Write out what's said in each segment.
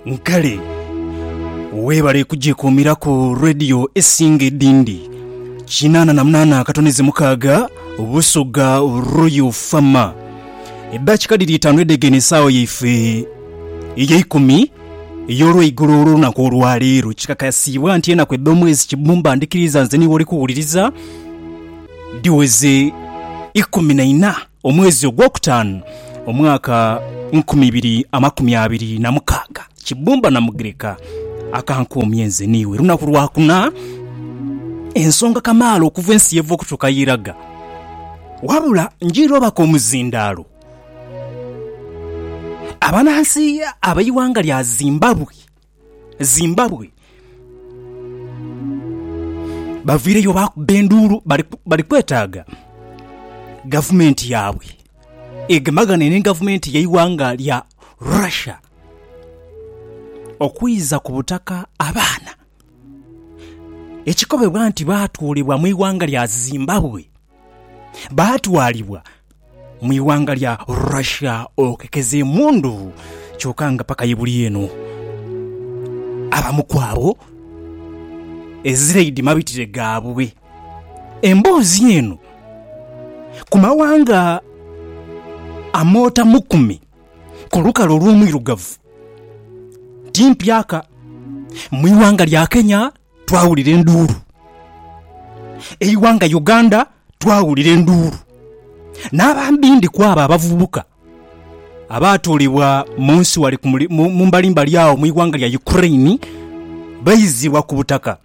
Nkale webale kugyekuumiraku radiyo esinga edindi. Kinaana na munaana akatoneze mukaaga Busoga Royal Fama. Eddaakika dhiri itaanu edhegene esaawa yaife eyeikumi ey'olweigulo olw'olunaku olwaleero. Kikakasiibwa nti enaku edh'omwezi Kibbumba ndhikiriza nze niiwe oli kuwuliriza dhiweze ikumi na ina. Omwezi ogwokutaanu, omwaka nkumi ibiri amakumi abiri na mukaaga, Kibumba Namugirika akankuumya nze n'iwe lunaku lwa kuna, ensonga kamaala okuva ensi yeva okutuuka y'eraga. Wabula njiire obaka omuzindaalo abanansi ab'eighanga lya Zimbabwe. Zimbabwe baviireyo baakuba enduulu bali kwetaaga gavumenti yaabwe egemagane ni gavumenti y'eighanga lya Russia okwiza ku butaka abaana ekikobebwa nti baatwalibwa mu ighanga lya Zimbabwe baatwalibwa mu ighanga lya Russia okekeza emundu kyoka nga paka ye buli eno abamu ku abo ezireidi mabitire gaabwe. Emboozi eno ku mawanga amootamukume ku lukale olw'omwirugavu ti mpyaka. Mu ighanga lya Kenya twawulira enduulu. Eighanga Uganda twawulira enduulu. N'abambi ndi ku abo abavubuka abaatuulibwa mu nsi wale ku muli- mu mu mbalimbali agho mu ighanga lya Ukraine baizibwa ku butaka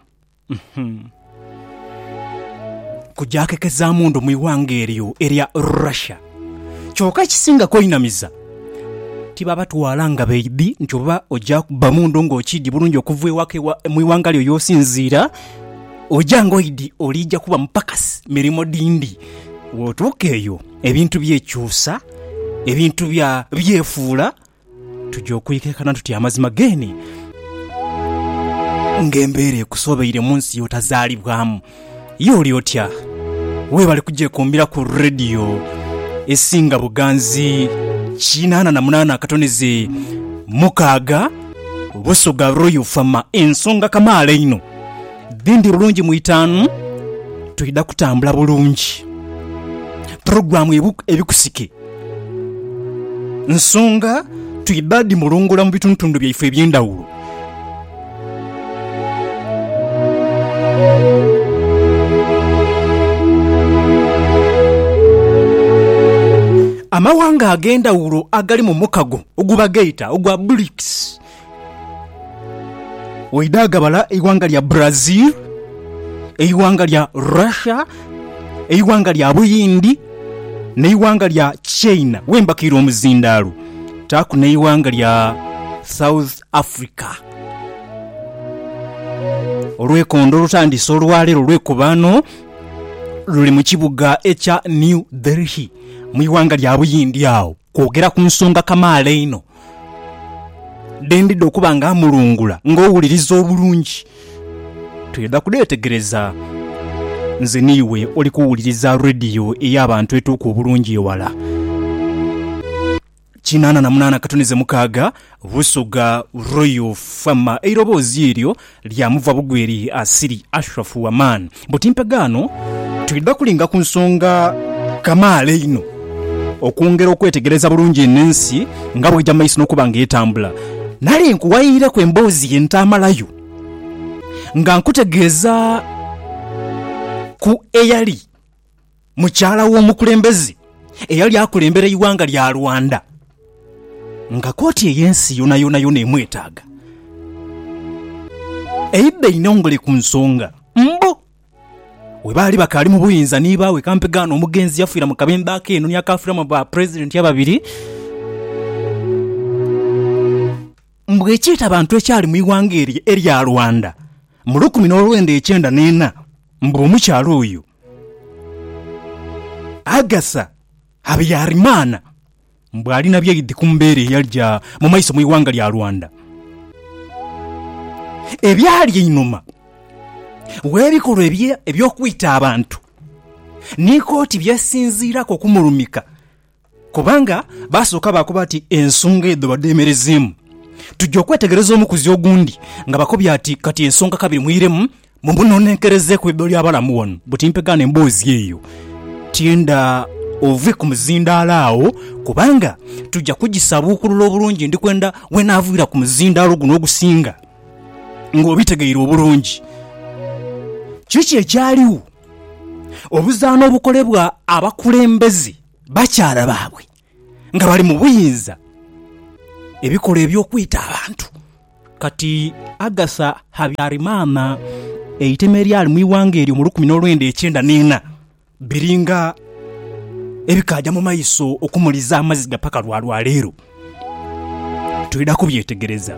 kujakekezaamu ndo mu ighanga eryo erya Russia. Kyoka ekisinga kweinamiza, tibabatwala nga baidhi nti oba oja kubba mu ndhu ng'okiidhi bulungi okuva ewaka mu ighanga lyo y'osinziira, oja ng'oidhi oliija kuba mupakasi mirimo dhindi. Bw'otuuka eyo, ebintu byekyusa, ebintu byefuula Tuja okwikeekana tuti amazima geene ng'embeera ekusobeire mu nsi y'otazaalibwamu? Ye oli otya? Weebale kugyekuumira ku rediyo esinga buganzi kinaana na munaana akatoneze mukaaga, Busoga Royal FM. Ensonga kamaala einho dhindi bulungi mu itaanu, twidha kutambula bulungi. Pulogulaamu Ebikusike Nsonga twidha dhimulungola mu bitundutundu byaife eby'endhawulo. Amawanga ag'endhawulo agali mu mukago oguba gheita ogwa BRICS. Waidha gabala eighanga lya Brazil, eighanga lya Russia, eighanga lya Buyindi n'eighanga lya China wembakiire omuzindaalo taaku n'eighanga lya South Africa. Olwekondo olutandise olwaleero olwekubaano luli mu kibuga ekya New Delhi mu ighanga lya Buyindi agho kwogera ku nsonga kamaala einho Dhendidha okuba nga mmulungula ng'owuliriza obulungi. Twidha kudheetegereza nze n'iwe oli kuwuliriza rediyo ey'abantu etuuka obulungi ewala. Kinaana na munaana katunize mukaaga, Busoga Royal Fm. Eiroboozi eryo Lyamuva bugwi eri Asiri, Ashraf wa Man. Buti mpegaano twidha kulinga ku nsonga kamaala einho okwongera okwetegereza bulungi eno ensi nga bw'eja mu maiso n'okuba nga etambula. Nali nkuwaireku emboozi ye ntaamalayo nga nkutegeeza ku eyali. mukyala w'omukulembeze eyali akulembera eighanga lya Rwanda nga koti ey'ensi yonayona yona emwetaaga. Eidha einhongole ku nsonga mbu we baali bakaali mu buyinza ni baawe kampegaano omugenzi yafiira mu kabembe akeeno ni akaafiramu ba Pulezidenti ababiri. Mbu ekyeta bantu ekyali mu ighanga eryo erya Rwanda mu lukumi n'olwenda ekyenda n'ena mbu omukyala oyo Agatha Habyarimana mbu ali na byaidhi ku mbeera eyalija mu maiso mu ighanga lya Rwanda. Ebyali einhuma gh'ebikolwa eby'okwita abantu ni kooti byesinziiraku okumulumika Kubanga baasooka baakoba ati, Ensonga edho badhemerezeemu. Tuja okwetegereza omukuzi ogundi nga bakobye ati, Kati ensonga kabiri mwiremu mumunonenkerezeeku idho ly'abalamu ghano buti mpegaane emboozi eyo. Tienda ove ku muzindaalo agho, kubanga tuja kugisabuukulula obulungi. Ndi kwenda weenaaviira ku muzindaalo guno ogusinga ng'obitegeire obulungi kiki ekyaligho. Obuzaana obukolebwa abakulembeze. Bakyala baabwe nga bali mu buyinza ebikola eby'okwita abantu. Kati Agatha Habyarimana, eitema eryali mu ighanga eryo mu lukumi n'olwenda ekyenda n'ena, biringa ebikaaja mu maiso okumuliza amaziga paka lwa lwaleero. Twidha kubyetegereza.